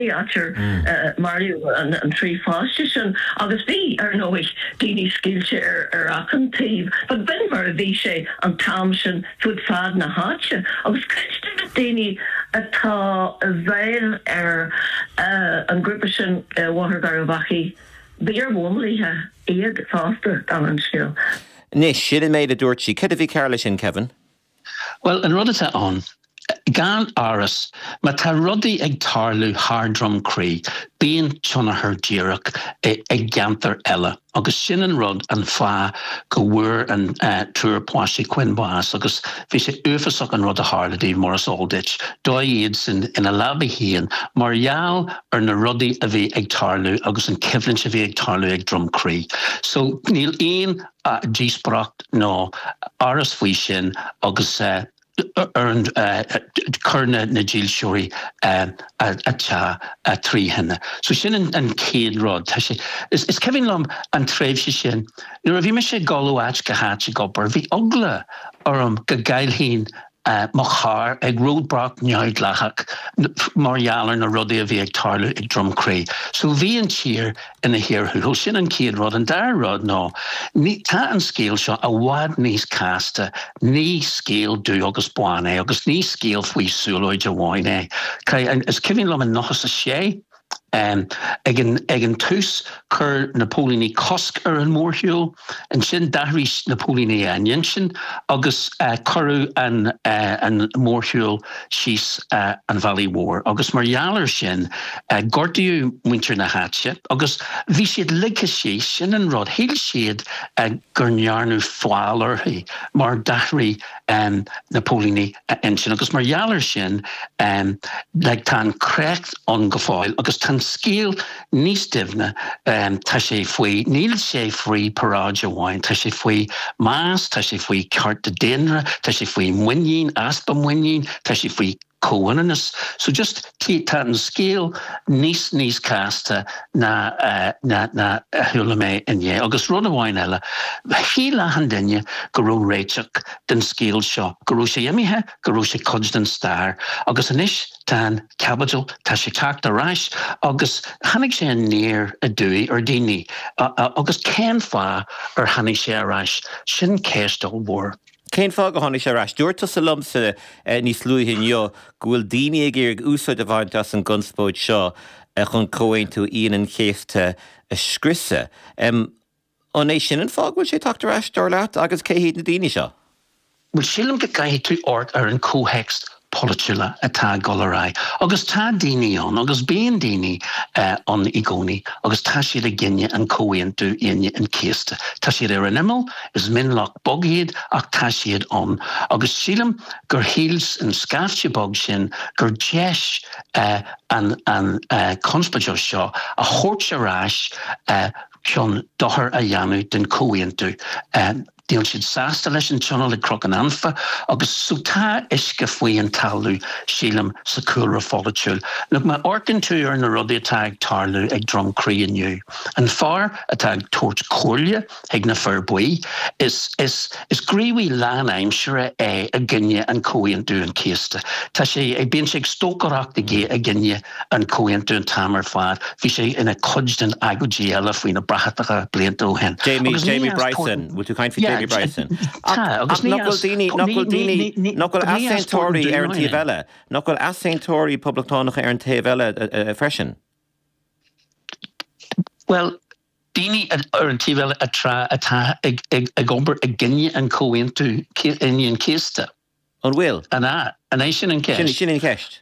theater. Maraíodh an trí pháiste sin agus bhí, ar ndóigh, daoine scaoilte ar achan taobh. B'in mar a bhí sé an t-am sin fud fad na háite agus cuid de na daoine atá i bhfeighil ar an ghrúpa sin i mBóthar Gharbhachaidh, b'iar-mhíleataigh iad fosta, de réir an scéil. Anois, sin an méid a dúirt sí. Céard a bhí cearr leis sin, Kevin? Bhuel, an rud atá ann, gan amhras, má tá rudaí ag tarlú thart ar Dhroim Crí, bíonn tionchar díreach i gceantair eile agus sin an rud, an fáth go bhfuair an triúr páistí Quinn bás agus bhí sé uafasach an rud a tharla díobh mar is eol duit, dódh iadsan ina leabaidh féin mar gheall ar na rudaí a bhí ag tarlú agus an coimhlint a bhí ag tarlú ag Droim Crí. So, níl aon. díospóireacht nó amhras faoi sin agus chuir na dílseoirí an teach trí thine. So sin an chéad rud. Tá sé, is cuimhin liom an tréimhse sin, nuair a bhí mise ag dul ó áit go háit ag obair, bhí eagla orm go gcaillfinn mo charr ag ródbhlac neamhdhleathach mar gheall ar na rudaí a bhí ag tarlú ag Drumcree. So bhí an tír ina cíor thuathail. Sin an chéad rud. An dara rud ná, tá an scéal seo i bhfad níos casta. Ní scéal dubh agus bán é agus ní scéal faoi siúlóid amháin é. 'Cause is cuimhin liom i 96, Ag an tús chuir na póilíní cosc ar an mórshiúl, ansin d'athraigh na póilíní a n-intinn agus cuireadh an mórshiúl síos an bhealach mhór agus mar gheall ar sin gortaíodh muintir na háite agus bhí siad ligthe síos, sin an rud, shíl siad go ndearnadh feall orthu mar d'athraigh na póilíní a n-intinn agus mar gheall air sin like tá an créacht ann go fóill agus tá an scéal níos doimhne, tá sé faoi, níl sé faoi paráid amháin, tá sé faoi meas, tá sé faoi cearta daonna, tá sé faoi mhuinín, easpa muinín, tá sé faoi comhionannas. So just tá an scéal níos níos casta ná ná ná a chuala mé inné. Agus rud amháin eile, shíl achan duine go raibh réiteach don scéal seo, go raibh sé imithe, go raibh sé cuid den stair. Agus anois tá an caibidil, tá sé teacht ar ais agus tháinig sé aniar aduaidh ar daoine. Agus cén fáth ar tháinig sé ar ais? Sin ceist ollmhór. Cén fáth gur tháinig sé ar ais? Dúirt tusa liomsa níos luaithe inniu go bhfuil daoine ag iarraidh úsáid a bhaint as an gconspóid seo chun Comhaontú Aoine an Chéasta a scriosadh. An é sin an fáth go bhfuil sé ag teacht ar ais, dar leat, agus cé hiad na daoine seo? Bhuel, sílim go gcaithfidh tú amharc ar an comhthéacs polaitiúla atá ag dul ar aghaidh agus tá daoine ann agus bíonn daoine ann i gcónaí agus tá siad ag i gcoinne an Chomhaontú Aoine an Chéasta. Tá siad ar an imeall, is mionlach beag iad ach tá siad ann agus sílim gur shíl an scaifte beag sin gur deis an conspóideach seo a thabhairt ar ais chun dochar a dhéanamh don Chomhaontú. Níl siad sásta leis an tionól ag Croc an Anfa agus so tá uisce faoi an talamh sílim sa cúlra pholaitiúil. Nuair a amharcann tú ar na rudaí atá ag tarlú ag Droim Crí inniu? An fear atá ag tabhairt comhairle chuig na Fir Buí, is, is, is gníomhaí lán aimsire é i gcoinne an Chomhaontú an Chéasta. Tá sé ag, bíonn sé ag stócaireacht i gcoinne, an comhaontú an t-am ar fad. Bhí sé ina cuid den agóidí eile faoi na bratacha blianta ó shin. Jamie Bryson, bhfuil tú ag caint faoi Jamie Bryson? Tá, agus ní as. Nach bhfuil daoine, nach bhfuil daoine, nach bhfuil easaontóirí ar an taobh eile, nach bhfuil easaontóirí poblachtánacha ar an taobh eile freisin? Bhuel, daoine ar an taobh eile atá ag obair i gcoinne an Chomhaontú Aoine an Chéasta. An bhfuil? An ea? An é sin an ceist? Sin an cheist.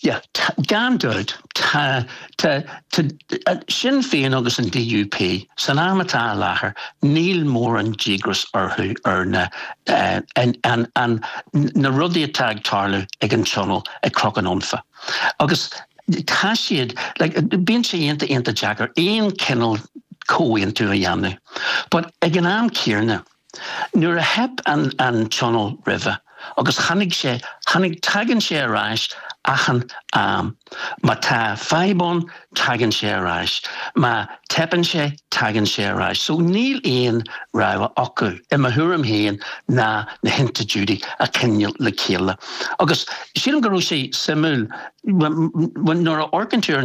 Yeah, gan dabht, tá, tá, tá, Sinn Féin agus an DUP, san am atá i láthair, níl mórán díograis orthu ar na, an, an, an, na rudaí atá ag tarlú ag an Tionól ag Cnoc an Anfa. Agus tá siad, like, bíonn sé iontach iontach deacair aon cineál comhaontú a dhéanamh. But ag an am céanna, Nuair a theip an tionól roimhe agus tháinig sé tháinig tagann sé ar ais achan am. Má tá fadhb ann tagann sé ar ais. Má teipeann sé tagann sé ar ais. So níl aon rogha acu, i mo thuairim féin, ná na hinstitiúidí a choinneáil le chéile. Agus sílim go raibh sé suimiúil nuair a amharcann tú ar an.